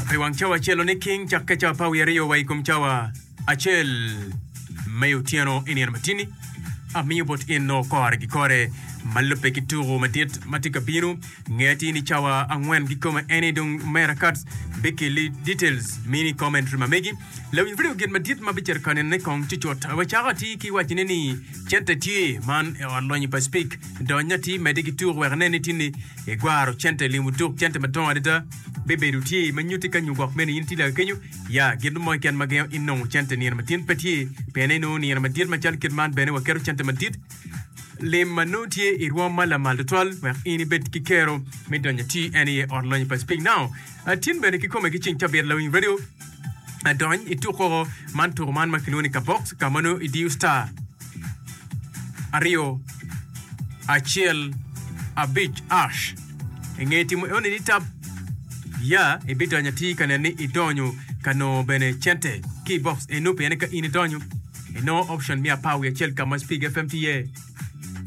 I wang cawa acel oniking cak ke cawa pa wiye aryo wa i kom cawa acel ma i otyeno i nino matini. Amiyo bot in nongo kore gi kore ma lubbe ki tuku madit ma tye ka bino. Nge atir ni cawa angwen kikome eni dong Mera Katz bikilli details mini commentary ma megi. Lewiny vidio Gin Madit ma Bicito Kanine Kong Cucut? Wacako atir ki wacine ni, Cente Tye! Man e ot lonyo pa Speke. Dony atir medde ki tuk wek inen ni tinni igwaro cente limo duk cente madongo adada. Bibedo tye ma nyutti ka nyo gwok meno in itye lake kenyo. Ya, gin mo keken ma gengo in nongo cente nino matin pe tye, pien inongo nino madit macalo kit man bene waketo cente madit lim ma nongo tye i rwom ma lamal tutwal wek in ibed ki kero me donyo atir en aye ot lonyo pa Speke. Now, atin bene kikome ki ceng cabit lewiny vidio. adony i tuko man tuko man ma kilwongo ni kabox ka ma nongo idiyo star aryo acel abic ash inge timo eoni ni tab ya ibidonyo atir ka nen ni idonyo ka nongo bene cente ki box eno pien ka in idonyo inongo option me apar wiye acel ka ma Speak FM tye iye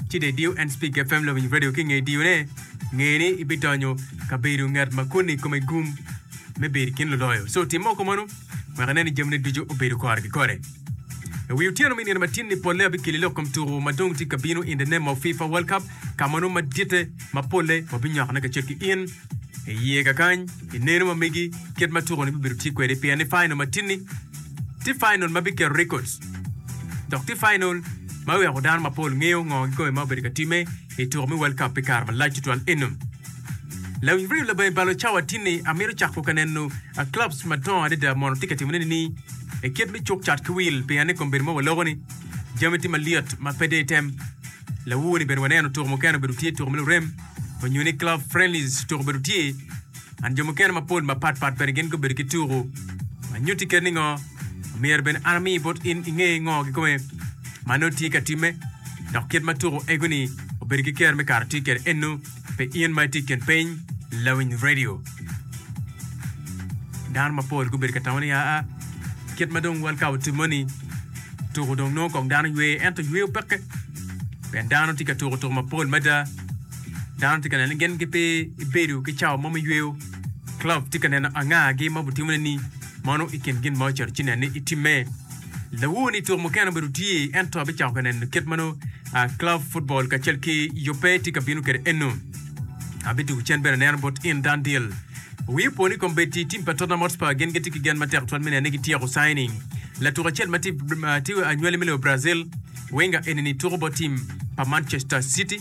ci dong idiyo Enspeak FM Lobiny Radio ki nge diyone, nge ni ibidonyo ka bedo ngat ma koni kome gum me bedo i kin luloyo. So tim moko mano wek inen ni jamine ducu obedo kore ki kore. I wi otyeno me nino matin ni polle abikeli lok kom tuko ma dong tye ka bino in the name of FIFA World Cup ka ma nongo maditte ma polle wabinyokone kacel ki in I ye kakany ineno ma megi kit ma tuko ni bibedo tye kwede pien ni final ma tin ni tye final ma biketo records dok tye final ma weko dano ma pol ngeyo ngo ki kome ma obedo ka time i tuko me world cup pi kare ma lac tutwal enum. Lawiny real labonge balo cawa tin ni amito cako ka neno a clubs ma dongo adada mono tye ka timo nene ni e kit me cuk cat ki wil pien ni kombeddi mo wa loko ni jami tye malyet ma pe de item Lawowo ni bene waneno tuko mukene obedo tye tuko me lurem onyo ni club friendlies tuko obedo tye and jo mukene mapol mapat pat bene gin gubedo ki tuko. Anyutti keri ningo? Myero bene an ami bot in inge ngo gikome ma nongo tye ka timme dok kit ma tuko ego ni obedo ki kero me kara tye kede eno. Pi in ma itye i kin piny lawiny redio, dano mapol gubedo ka tamo ni, Aa, kit ma dong World Cup otimme-ni, tuko dong nongo kong dano ywe. Ento yweyo peke, pien dano tye ka tuko tuko mapol mada. Dano tye ka neno ni gin gipe gibedo ki cawa mo me yweyo. Klopp tye ka neno angagi ma obitimone-ni. Mono i kin gin ma ocito ci nen ni itimme. Lawor ni tuk mukene obedo tye, ento abicako ka neno kit ma nongo club football kacel ki yubbe tye ka bino kwede eno. Abitugo cen bene aneno bot in Dundee. Wi opo ni kombeddi tim pa Tottenham Hotspur gin gitye ki gen matek twal me neno ni gityeko signing latuk acel ma tye anywali me lobo Brazil. Wenger eni ni tuko bot tim pa Manchester City.